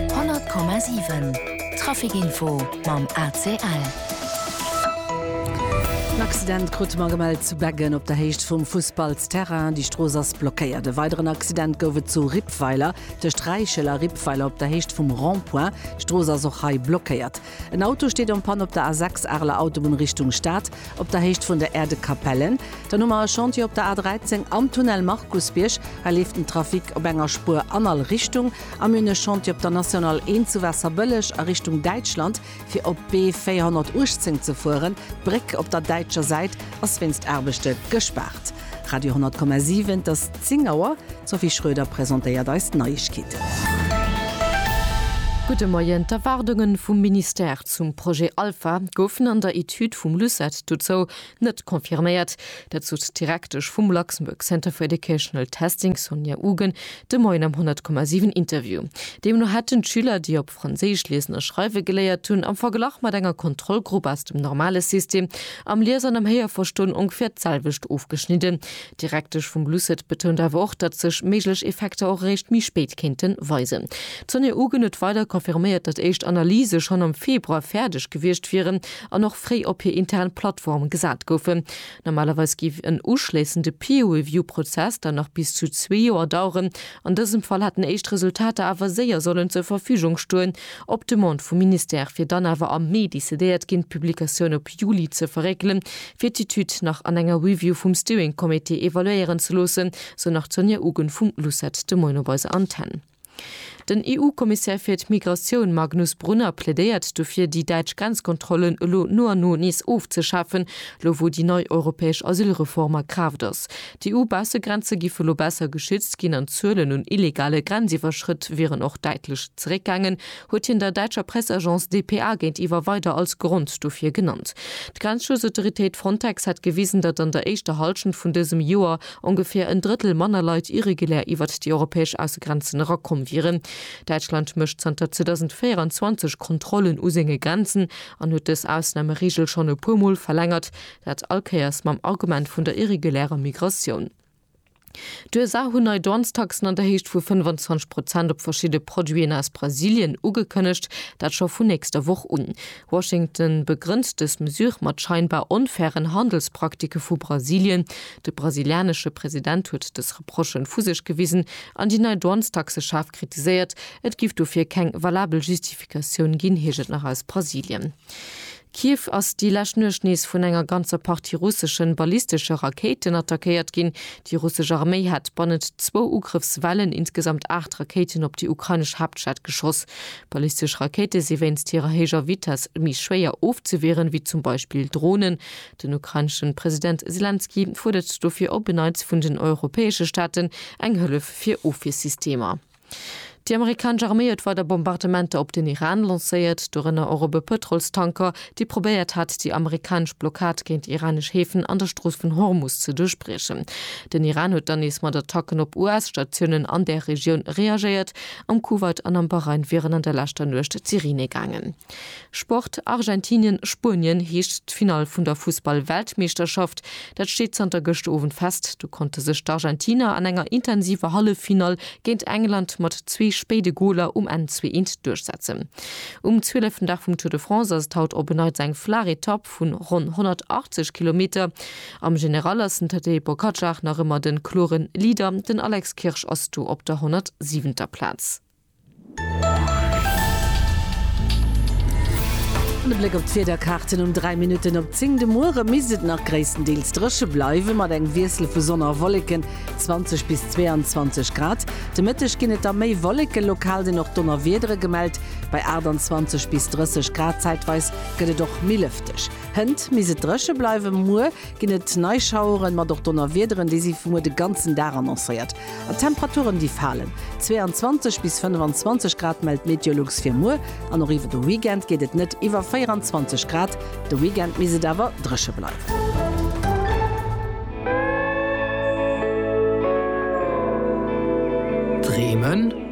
100,7 Trafic Info mam ACL. En Accident krute mer gemellt zu Beggen op der Héicht vum Fussballsterrain. Déi Strooss ass blockéiert. E weideren Accident gouf et zu Rippweiler tëscht Räichel a Rippweiler op der Héicht vum Rond-point. D'Strooss ass och hei blockéiert. En Auto steet en panne op der A6 Areler Autobunn Richtung Stad, op der Héicht vun der Aire de Capellen. Dann hu mer e Chantier op der A13 am Tunnel Markusbierg. Hei leeft den Trafic op enger Spuer an all Richtung. A mir hunn e Chantier op der National 1 zu Waasserbëlleg a Richtung Däitschland, fir op d'B 418 ze fueren. D'Bréck op der däitscher Säit ass wéinst Aarbechte gespaart. Radio 10,7 Das. 10 Auer, D'Sophie Schroeder presentéiert eis d'Neiegkeeten. Gudde Moien, D'Erwaardunge vum Ministère zum Projet Alpha goufen an der Etüd vum LUCET dozou net confirméiert. Dat sot d'Direktesch vum Luxembourg Center for Educational Testing, Sonia Ugen, de Moien am 100,7 Interview. Deemno hätten d'Schüler, déi op. Franséisch liesen a schreiwe geléiert hunn, am Verglach mat enger Kontrollgrupp aus dem normale System, am Lies an am Héierverstoen ongeféier d'selwecht ofgeschnidden. D'Direktesch vum LUCET betount awer och, datt sech méiglech Effekter och eréischt méi spéit kéinte weisen. D'Sonia Ugen huet weider confirméiert, datt éischt Analyse schonn am Februar fäerdeg gewiescht wieren an och fréi op hir intern Plattform gesat goufen. Normalerweis géif en uschléissende Peer-Review-Prozess dann nach bis zu zwee Joer daueren. An dësem Fall hätten éischt Resultater awer séier sollen zur Verfügung stoen. Op Demande vum Ministère wier dann awer am Mee decidéiert ginn, d'Publikatioun op Juli ze verréckelen, fir d'Etüd nach an enger Review vum Steering Committee evaluéieren ze loossen, sou nach d'Sonja Ugen vum LUCET de Moien op eiser Antenne. Den EU-Kommissär fir d'Migratioun Magnus Brunner plädéiert dofir, déi däitsch Grenzkontrollen elo no an no nees ofzeschafen, lo wou déi nei europäesch Asylreform a Kraaft ass. D'EU-Baussegrenze giffe lo besser geschützt ginn an d'Zuelen un illegale Grenziwwerschrëtt wieren och däitlech zeréckgaangen, huet hien der däitscher Press-Agence dpa géintiwwer weider als Grond dofir genannt. D'Grenzschutzautoritéit Frontex hätt gewisen, datt an der éischter Hallschent vun dësem Joer, ongeféier en Drëttel manner Leit irregulär iwwert déi europäesch Aussegrenzen erakomm wieren. Däitschland mécht zanter 2024 Kontrollen u senge Grenzen an huet dës Ausnamereegel schonn e puer Mol verlängert, dat all Kéiers mam Argument vun der irregulärer Migratioun. D'USA hunn nei Douanestaxen an der Héicht vu 25 Prozent op verschidde Produiten aus Brasilien ugekënnegt, dat scho vun nächster Woch un. Washington begrënnt dës Mesure mat scheinbar onfairen Handelspraktiken vu Brasilien. De brasilianesche President huet dës Reprochen vu sech gewisen an déi nei Douanestaxe schaarf kritiséiert. Et giff dofir keng valabel Justifikatioun ginn, heescht et nach aus Brasilien. Kiew ass déi lescht Nuecht nees vun enger ganzer Partie russeschen ballistesche Rakéiten attackéiert ginn. Déi russesch Arméi hat bannent zwou Ugrëffswellen insgesamt 8 Rakéiten op déi ukrainesch Haaptstad geschoss. Ballistesch Rakéite si wéinst hirer héijer Vitess méi schwéier ofzewieren, wéi zum Beispill Dronen. Den ukraineschen President Selenskyj fuerdert dofir op e Neits vun den europäesche Staaten eng Hëllef fir Ofwiersystemer. Déi amerikanesch Arméi huet weider Bombardementer op den Iran lancéiert, dorënner och op e Pëtrolstanker, dee probéiert hat, déi amerikanesch Blockad géint iranesch Häfen an der Strooss vun Hormus ze duerchbriechen. Den Iran huet dann nees mat Attacken op US-Statiounen an där Regioun reagéiert, Am Kuwait an am Bahrain wieren an der leschter Nuecht d'Sireene gaangen. Sport, Argentinien, Spuenien heescht d'Finall vun der Fussball-Weltmeeschterschaft. Dat steet zanter gëscht Owend fest. Do konnte sech d'Argentiner an enger intensiver Halleffinall géint England mat zwee spéide Goler um Enn zwee eent duerchsetzen. Um 12. Dag vum Tour de France ass et haut op en Neits eng flaach Etapp. vun ronn 180 Kilometer. Am General ass den Tadej Pogacar nach ëmmer de kloren Leader, den Alex Kirsch ass do op der 107. Plaz. An e Bléck op d'Wiederkaarten um 3 Minutten op 10. De Muere misst et nach gréisstendeels dréche bleiwen, mat engem Wiessel vu Sonn a Wolleken, 20 bis 22 Grad. De Mëtteg ginn et da méi Wolleken, lokal sinn och Donnerwiedere gemellt, bei 28 bis 30 Grad zäitweis. gëtt et och méi lëfteg. Hënt misst et dréche bleiwen. Muer ginn et nei Schaueren, mat och Donnerwiederen. Déi si fir muer de ganzen Dag annoncéiert. An d'Temperaturen, déi falen. 22 bis 25 Grad mellt Meteolux fir muer. An och iwwer de Weekend geet et net iwwer 24 Grad. De Weekend misst et awer dréche bleiwen. Dreemen?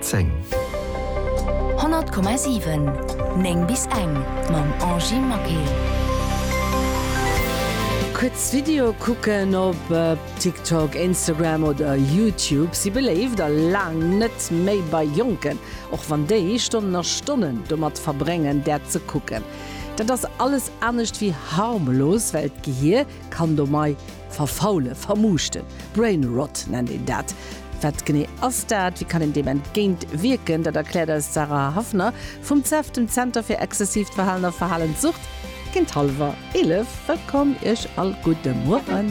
10. 100,7, 9 bis eng, mam Angie Maquet. Kuerz Video kucken op TikTok, Instagram oder YouTube si beléift a laang net méi bei Jonken, och wann déi Stonnen a Stonnen domat verbréngen, dat ze kucken. Dat ass alles anescht wéi harmlos, well d'Gehier kann do mei Verfaule, vermuuschten, brain rot nennt een dat. Wat genee ass dat? Wéi kann een deem entgéint wierken? Dat erkläert eis d'Sarah Haffner vum cef, dem Zenter fir exzessiivt Verhalen a Verhalenssucht, géint hallwer 11. Wëllkomm Iech all, gudde Mueren.